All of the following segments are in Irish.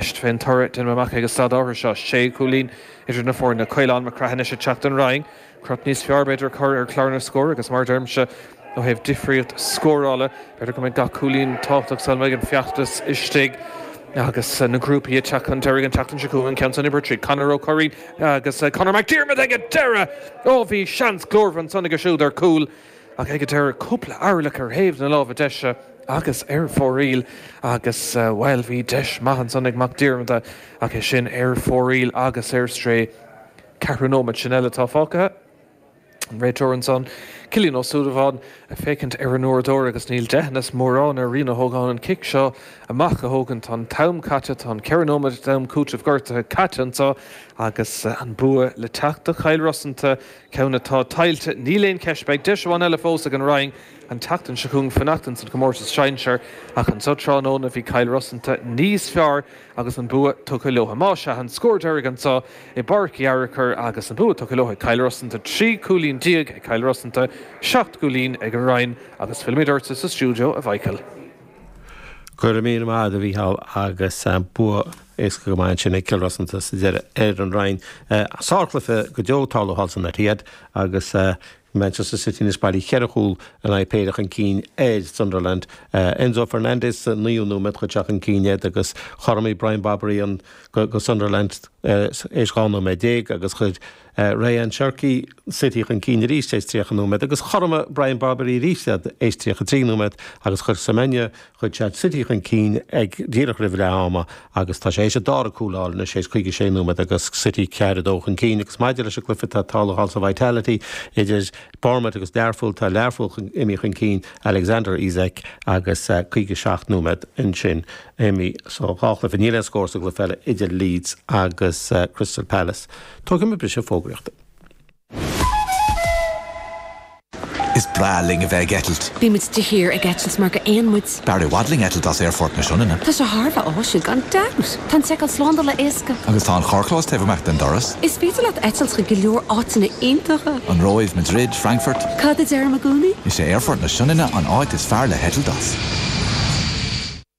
Is é an toradh a deinim amach ag an staid áirithe seo, sé chúilín idir na foirne, Caolán Mac Craith anois ag teacht don Rinn, crot níos fearr, b'fhéidir, a chur ar chlár na scór agus mar a deirimse, ó thaobh difríocht scórála, b'fhéidir go mbeidh gach cúilín tábhachtach sula mbeidh an feachtas istigh agus na grúpaí ag teacht chun deiridh an tseachtain seo chugainn, ceann san Uimhir 3, Conor Ó Cuirrín agus Conor Mac Diarmada ag an deireadh! Ó bhí seans glórmhar ansan aige siúd ar chúl. Ach ag an deireadh, cúpla orlach ar thaobh na láimhe deise agus ar fóraoil agus, bhuel, bhí deis maith ansan ag Mac Diarmada ach é sin ar fóraoil agus ar strae. Ceithre nóiméad sin eile atá fágtha. An réiteoir ansan, Cillian Ó Súilleabháin, ag féachaint ar an uaireadóir agus níl deithneas mórán ar Rian Ó hÓgáin an cic seo amach a thógaint. Tá an t-am caite, tá an ceithre nóiméad d'am cúiteamh gortuithe caite anso agus an bua le teacht do Chill Rosanta. ceann atá tuillte. Níl aon cheist, beidh deis amháin eile fós ag an Rinn an tseachtain seo chugainn fanacht ins an chomórtas sinsear, ach anseo tráthnóna bhí Cill Rosanta níos fearr agus an bua tugtha leotha. Más ea, an scór deiridh anseo i bPáirc Uí Fhearchair agus an bua tugtha leotha ag Cill Rosanta, trí chúilín déag ag Cill Rosanta, seacht gcúilín ag an Rinn agus fillimid ortsa sa stiúideo, a Mhichael. Go raibh míle maith agat a Mhícheál agus bua éasca go maith ansin ag Cill Rosanta sa deireadh ar an Rinn. Sárchluiche go deo ag tarlú thall san Etihad agus Manchester City anois bailithe ceithre chúl in aghaidh péire chun cinn ar Sunderland. Enzo Fernandez sa naoú nóiméad chuir sé chun cinn iad agus chothromaigh Brian Brobbey do Sunderland tar éis dhá nóiméad déag agus chuir Rayan Cherki, City chun cinn arís tar éis 30 nóiméad agus chothromaigh Brian Brobbey arís tar éis 33 nóiméad agus chuir Semenyo chuir sé City chun cinn ag díreach roimh leath ama agus tá sé tar éis a dhara cúl a fháil anois tar éis 56 nóiméad agus City 4 2 chun cinn agus maidir leis an gcluiche atá ag tarlú thall sa Vitality idir Bournemouth agus Learpholl tá Learpholl imithe chun cinn Alexander Isak agus 57 nóiméad ansin imithe sa gcluiche níl aon scór sa gcluiche eile idir Leeds agus Crystal Palace. Tógfaidh mé briseadh fógraíochta. Is breá linn a bheith ag eitilt. Bíonn muid de shíor ag eitilt mar gur éin muid. B'fhearr i bhfad linn eitilt as Aerfort na Sionainne. Tá sé thar a bheith áisiúil gan dabht! Tá an tseiceáil slándála éasca. Agus tá an carrchlós taobh amach den doras. Is féidir leat eitilt chuig go leor áiteanna iontacha. An Róimh, Madrid, Frankfurt. Cad a deirim i gcónaí? Is é Aerfort na Sionainne an áit is fearr le heitilt as.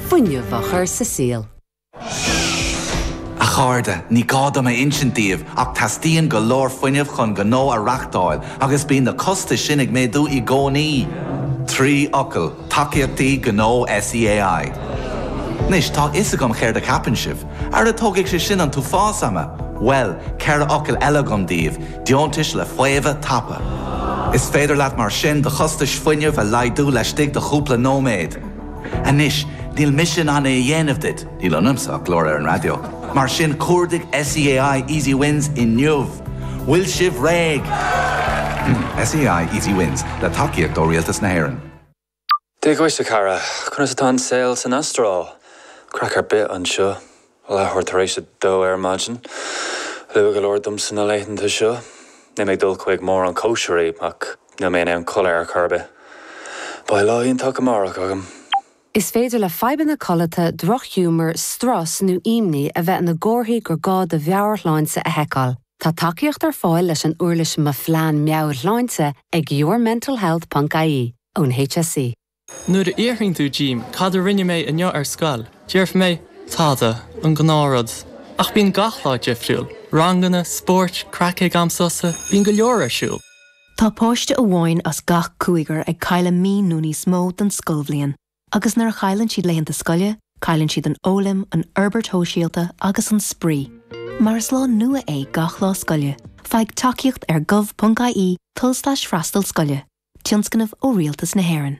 fuinneamh a chur sa saol. A chairde, ní gá dom a insint daoibh ach teastaíonn go leor fuinnimh chun gnó a reachtáil agus bíonn na costais sin ag méadú i gcónaí. Trí fhocal, Tacaíochtaí Gnó SEAI. Anois, tá a fhios agam céard a cheapann sibh. Ara tógfaidh sé sin an t-uafás ama! Bhuel, ceithre fhocal eile agam daoibh, Deontais le Faomhadh Tapa. Is féidir leat mar sin do chostais fuinnimh a laghdú laistigh de chúpla nóiméad. Anois, níl mise in ann é a dhéanamh duit, níl ionamsa ach glór ar an raidió. Mar sin, cuardaigh SEAI Easy Wins inniu. Bhfuil sibh réidh? SEAI Easy Wins, le tacaíocht ó Rialtas na hÉireann. Dia dhuit a chara, conas atá an saol san Astráil? Craic ar bith anseo. Leathuair tar éis a dó ar maidin. Luath go leor domsa na laethanta seo. Níl mé ag dul chuig mórán cóisirí, ach níl mé in ann codladh ar chor ar bith. Beidh lá iontach amárach agam! Is féidir le fadhbanna codlata, drochghiúmar, strus nó imní a bheith ina gcomharthaí gur gá do mheabhairshláinte a sheiceáil. Tá tacaíocht ar fáil leis an uirlis Mo Phlean Meabhairshláinte ag yourmentalhealth ponc ie ón HSE. Nuair a fhiafraíonn tú díom cad a rinne mé inniu ar scoil, déarfaidh mé, tada, an gnáth rud. Ach bíonn gach lá difriúil, ranganna, spóirt, craic ag am sosa, bíonn go leor ar siúl. Tá páiste amháin as gach cúigear ag cailleadh mí nó níos mó den scoilbhliain agus nuair a chailleann siad laethanta scoile, Cailleann siad an fhoghlaim, an fhorbairt shóisialta agus an spraoi. Mar is lá nua é gach lá scoile, faigh tacaíocht ar gov.ie, tulslais freastal scoile, tionscnamh ó Rialtas na hÉireann.